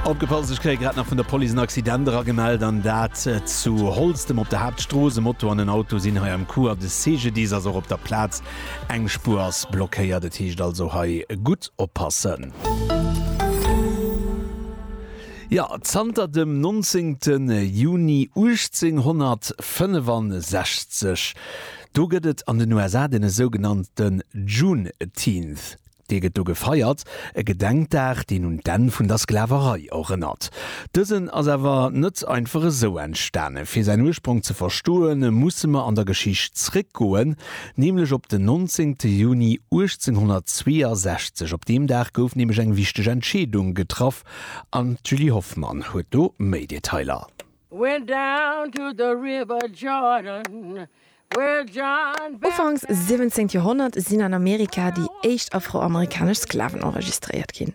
Opgepasst, ech kréie grad nach vun der Police en Accident eragemellt, an dat zu Holztem op der Haaptstrooss. E Moto an en Auto sinn hei am Coup a de CGDIS ass och op der Plaz. Eng Spuer ass blockéiert, et heescht also hei gutt oppassen. Jo, zanter dem 19 Juni 1865, do gëtt et an den USA dee sougenannte Juneteenth. Dee gëtt do gefeiert, e Gedenkdag, deen un d'Enn vun der Sklaverei erënnert. Dësen ass awer net einfach esou entstanen. Fir säin Ursprong ze verstoe musse mer an der Geschicht zréckgoen, nämlech op den 19 Juni 1862. Op deem Dag gouf nämlech eng wichteg Entscheedung getraff an d'Julie Hoffmann huet do méi Detailer. Went down to the river Jordan, where John Baptist. Ufanks 17 Joerhonnert sinn an Amerika déi éischt afroamerikanesch Sklaven enregistréiert ginn.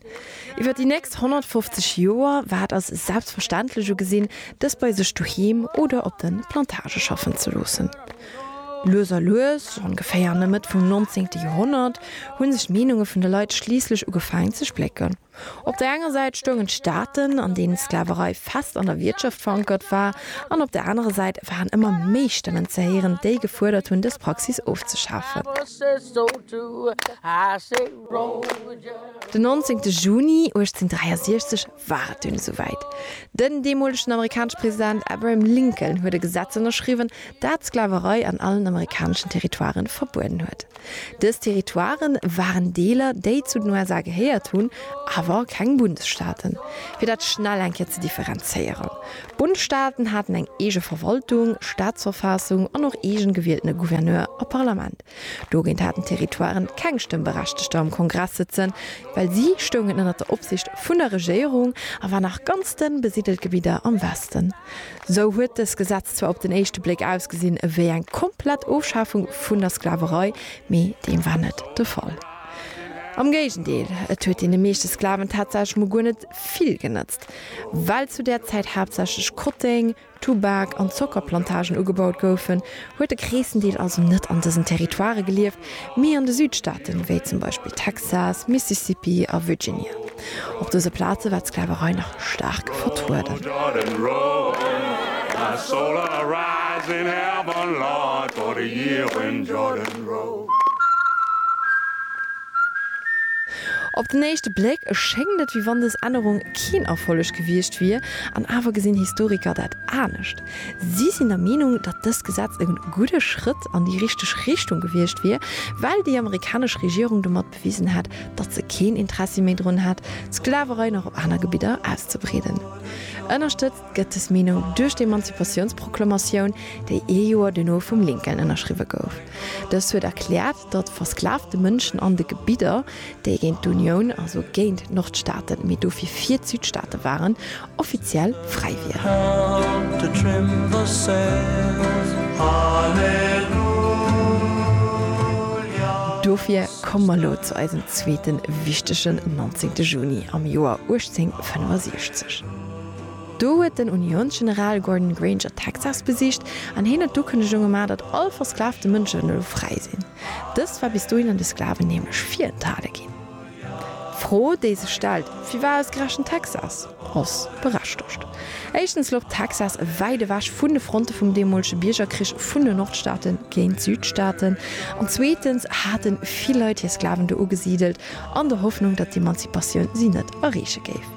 Iwwer déi nächst 150 Joer war et als selbstverständlech ugesinn, dës bei sech doheem oder op de Plantagë schaffen ze loossen. Lues a lues, ongeféier an der Mëtt vum 19. Joerhonnert, hu sech d'Meenunge vun de Leit schliisslech ugefaangen ze splécken. Op der enger Säit stoungen d'Staaten, an deenen d'Sklaverei fest an der Wiertschaft verankert war, an op der anerer Säit waren ëmmer méi Stëmmen ze héieren, déi gefuerdert hunn, dës Praxis ofzeschafen. Den 19 Juni 1863 war et dunn esouwäit. Den deemolegen amerikanesche President Abraham Lincoln huet e Gesetz ënnerschriwwen, dat d'Sklaverei an allen amerikaneschen Territoiren verbueden huet. Dës Territoire waren Deeler, déi zu den USA gehéiert hunn, awer keng Bundesstaaten. Fir dat schnell eng Kéier ze differenzéieren, D'Bundstaaten haten eng eege Verwaltung, Staatsverfaassung an och eegen gewieltene Gouverneur a Parlament. Dogéint haten d'Territoiren keng Stëmmberechtegter am Kongress sëtzen, well si stoungen ënnert der Opsicht vun der Regéierung a waren nach ganz dënn besidelt Gebidder am Westen. Sou huet dës Gesetz zwar op den éischte Bléck ausgesinn ewéi eng komplett Ofschafung vun der Sklaverei, mee deem war net de Fall. Am Géigendeel, et huet deene meeschte Sklaven tatsächlech mol guer net vill genëtzt. Well zu där Zäit haaptsächlech Kotteng, Tubak an Zockerplantagen ugebaut goufen, huet de Kreessendeel also net an dësen Territoirë gelieft, mee an de Südstaaten, wéi zum Beispill Texas, Mississippi a Virginia. Op dëse Plaze war d'Sklaverei nach staark vertrueden. Op den éischte Bléck schéngt et, wéi wann dës Ännerung keen Erfolleg gewiescht wier, an awer gesinn Historiker dat anescht. Si sinn der Meenung, datt dëst Gesetz e gudde Schrëtt an déi richteg Richtung gewiescht wier, well déi amerikanesch Regierung domat bewisen hätt, datt se keen Interessi méi drun hätt, d'Sklaverei nach op aner Gebidder auszebreeden. Ënnerstëtzt gëtt dës Meenung duerch d'Emanzipatiounsproklamatioun, déi ee Joer duerno vum Lincoln ënnerschriwwe gouf. Dëst huet erkläert, datt versklavte Mënschen an de Gebidder, déi géint d'Unioun, also géint d'Nordstaaten, mee dofir fir d'Südstaaten waren, offiziell fräi wieren. Dofir komme mer elo zu eisem zweete wichtegen 19. Juni am Joer 1865. Do huet den Uniounsgeneral Gordon Granger Texas besicht an hien huet d'Ukënnegung gemaach, datt all versklavte Mënschen elo fräi sinn. Dëst war bis dohin an de Sklaven nämlech virenthale ginn. D'Fro, déi sech stellt, firwar ausgerechent Texas? ass berechtegt. Éischtens louch Texas wäit ewech vun de Fronte vum deemolege Biergerkrich vun den Nordstaate géint d'Südstaaten an zweetens hate vill Leit hir Sklaven do ugesidelt an der Hoffnung, datt d'Emanzipatioun si net erreeche géif.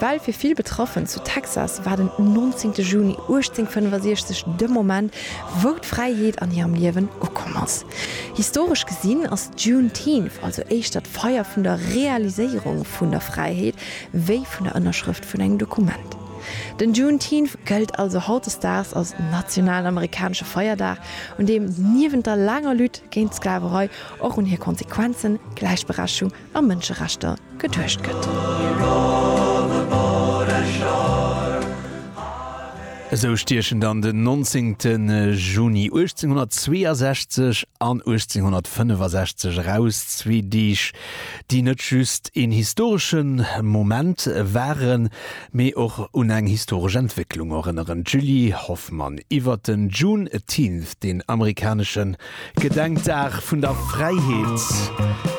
Well fir vill Betraffen zu Texas war den 19 Juni 1865 de Moment, wou d'Fräiheet an hirem Liewen ukomm ass. Historesch gesinn ass d'Juneteenth also éischter d'Feier vun der Realiséierung vun der Fräiheet wéi vun der Ënnerschrëft vun engem Dokument. Den Juneteenth gëllt also hautdesdaags als nationalen amerikanesche Feierdag, un deem niewent der laanger Lutte géint d'Sklaverei och un hir Konsequenzen, Gläichberechtigung, a Mënscherechter geduecht gëtt. Esou stiechen dann den 19 Juni 1862 an 1865 eraus zwee Deeg, déi net just een historesche Moment waren, mee och un eng historesch Entwécklung erënneren. D'Julie Hoffmann iwwer den Juneteenth, den amerikanesche Gedenkdag vun der Fräiheet.